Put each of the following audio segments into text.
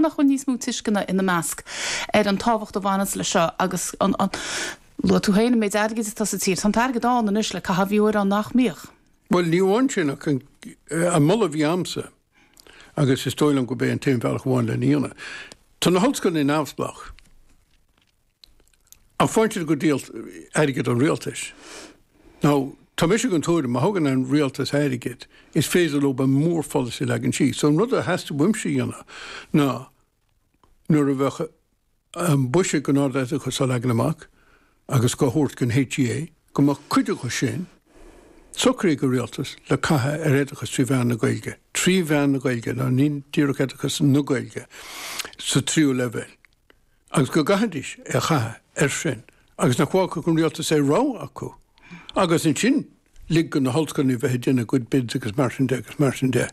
nach bhfuil níos mó tuisceana ina measc ar an tábhacht a bhaineas leis seo agus luaigh tú féin an méid airgid atá sa tír. Tá an t-airgead ann anois le caitheamh, bhí uair ann nach mbíodh. Bhuel, ní amháin sin ach an moladh a bhí agamsa, agus is dóigh liom gurb é an t-aon bhealach amháin lena dhéanamh, tá na hollscoileanna neamhspleách, Ach faigheann siad go díol airgead an rialtais. Now tá mise den tuairim má thugann an rialtas airgead, is féidir leo an mórpholasaí a leagan síos. So an rud a theastaigh uaimse a dhéanamh ná nuair a bheadh an buiséad don ardoideachas á leagan amach agus dhá thabhairt don HEA, go mbeadh cuid acu sin socraithe ag an rialtas le caitheamh ar oideachas trí mheán na Gaeilge, trí mheán na Gaeilge, ná ní díreach oideachas na Gaeilge sa tríú leibhéal. agus go gcaithfidís é a chaitheamh air sin agus nach bhfágfadh an rialtas aon rogha acu agus ansin lig do na hollscoileanna bheith ag déanamh a gcuid bids agus mar sin de agus mar sin de.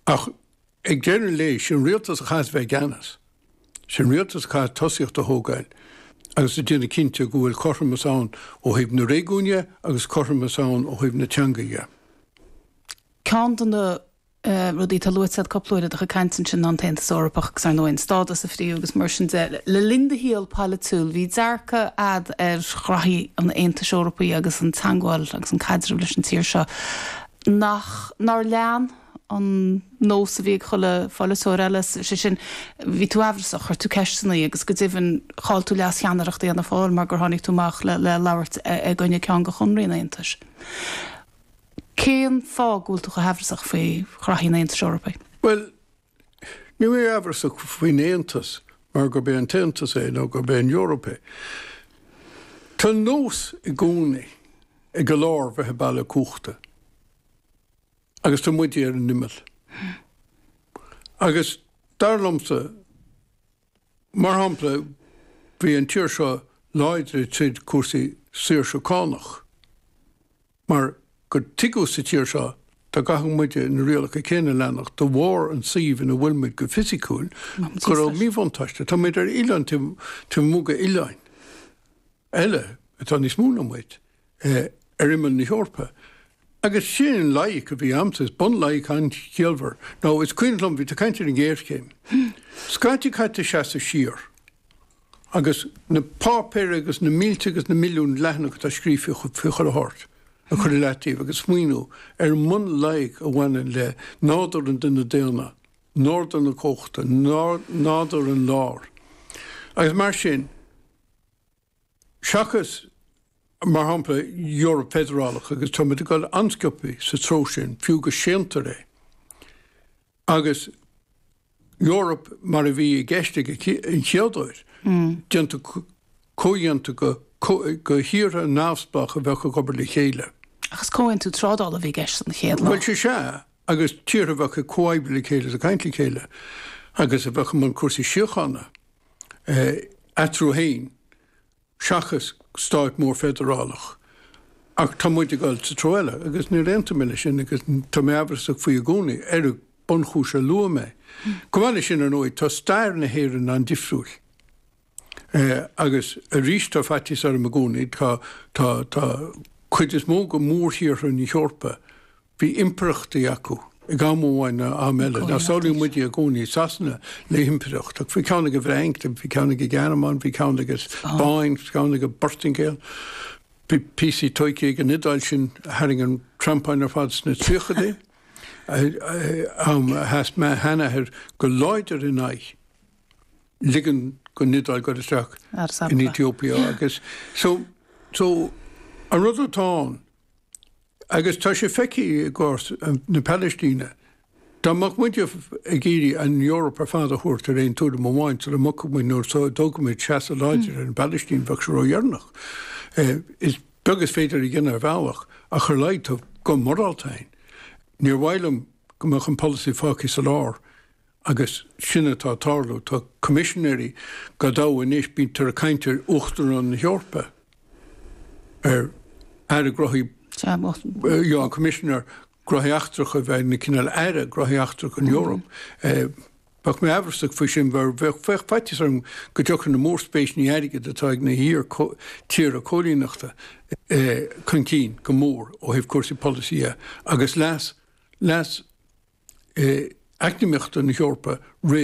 Ach ag deireadh an lae, is é an rialtas a chaithfidh bheith i gceannas. Is é an rialtas a chaithfidh tosaíocht a thógáil agus a dhéanamh cinnte go bhfuil cothromas ann ó thaobh na réigiún dhe agus cothromas ann ó thaobh na teanga dhe. Ceann de na Rudaí atá luaite agat cúpla uair i do chuid cainte ansin ná an tAontas Eorpach agus, ar ndóigh, an stádas a fríothadh agus mar sin de. Le linn do shaol polaitiúil, bhí dearcadh agat ar ghraithí an Aontais Eorpaigh agus an teagmháil agus an caidreamh leis an tír seo nach, nár lean an nós a bhí ag chuile pholaiteoir eile, sé sin, bhí tú aimhreasach, chuir tú ceisteannaí agus go deimhin chaill tú leas-cheannaireacht Fhianna Fáil mar gur tháinig tú amach le labhairt i gcoinne ceann de chonarthaí an Aontais. Cén fáth go bhfuil tú chomh haimhreasach faoi ghraithí an Aontais Eorpaigh? Bhuel, níl mé aimhreasach faoin Aontas mar gurb é an tAontas é nó gurb é an Eoraip é. Tá an nós i gcónaí ag an lár bheith ag bailiú cumhachta agus tá muide ar an imeall. Agus dar liomsa, mar shampla, bhí an tír seo láidir i dtaobh cúrsaí saoirse cánach. Mar gur tuigeadh sa tír seo dá gcaithfeadh muide na rialacha céanna a leanacht de bharr an tsuímh ina bhfuil muid go fisiciúil, go raibh míbhuntáiste. Tá muid ar oileán taobh amuigh d'oileán eile atá níos mó ná muid, ar imeall na hEorpa. Agus sin an loighic a bhí agamsa, is bunloighic an-chiallmhar. Now is cuimhin liom, bhí tú ag caint ar an ngéarchéim. Scaití caithfidh tú seasamh siar. Agus na páipéir agus na mílte agus na milliúin leathanach atá scríofa a chur, a thabhairt, a chur i leataobh agus smaoiniú ar an mbunloighic a bhaineann le nádúr an duine daonna, nádúr na cumhachta, nádúr an lár. Agus mar sin, seachas, mar shampla, Eoraip Feidearálach, agus táimid ag dul an-sciobthaí sa treo sin, fiú go séantar é. Agus Eoraip mar a bhí i gceist an chéaduair, déanta comhdhéanta de thíortha neamhspleácha a bheadh ag obair le chéile. Ach is comhaontú trádála a bhí i gceist an chéad lá. Bhuel, sé sea, agus tíortha a bheadh ag comhoibriú le chéile is ag caint le chéile, agus a bheadh i mbun cúrsaí síochána eatarthu féin. seachas stát mór feidearálach. Ach tá muid ag dul sa treo eile, agus níor aontaigh mé leis sin, agus tá mé amhrasach faoi i gcónaí, ar an mbunchúis a luaigh mé. Chomh maith leis sin, ar ndóigh, tá stair na hÉireann an-difriúil. Agus arís, tá faitíos orm i gcónaí, tá, tá, tá, cuid is mó de mhórthíortha na hEorpa, Bhí impireachtaí acu ag am amháin nó am eile. Samhlaíonn muide i gcónaí, Sasana, le himpireacht. Bhí ceann ag an bhFrainc, bhí ceann ag an Ghearmáin, bhí ceann ag an Spáinn, bhí ceann ag an bPortaingéil, bhí píosaí tógtha ag an Iodáil sin a tharraing an treampáin ar fad sna tríochadaí, am a sheas mo sheanathair go láidir in aghaidh ligean don Iodáil dul isteach in Aetóipia. Agus an rud atá ann, Agus tá sé feicthe i gcás na Palaistíne. Dá mbeadh muid ag iarraidh an Eoraip ar fad a thabhairt ar aon tuairim amháin sula mbogfadh muid nó sula dtógfadh muid seasamh láidir ar an bPalaistín, bheadh sé ródheireanach. Is beag is féidir a dhéanamh ar bhealach ach ar a laghad tá guth morálta againn. Níor mhaith liom go mbeadh an polasaí fágtha sa lár. Agus sin atá ag tarlú. Tá coimisinéirí go leor anois, bíonntar ag caint ar Uachtarán na hEorpa, ar Aire Gnóthaí, an Coimisinéir Gnóthaí Eachtracha a bheith ina cineál Aire Gnóthaí Eachtracha an Eoraip. Bheadh mé amhrasach faoi sin, mar bheadh faitíos orm go dtiocfadh na mórspéiseanna airgid atá ag na hiarthíortha coilíneachta chun cinn go mór ó thaobh cúrsaí polasaí dhe, agus leas leas eacnamaíochta na hEorpa roimh.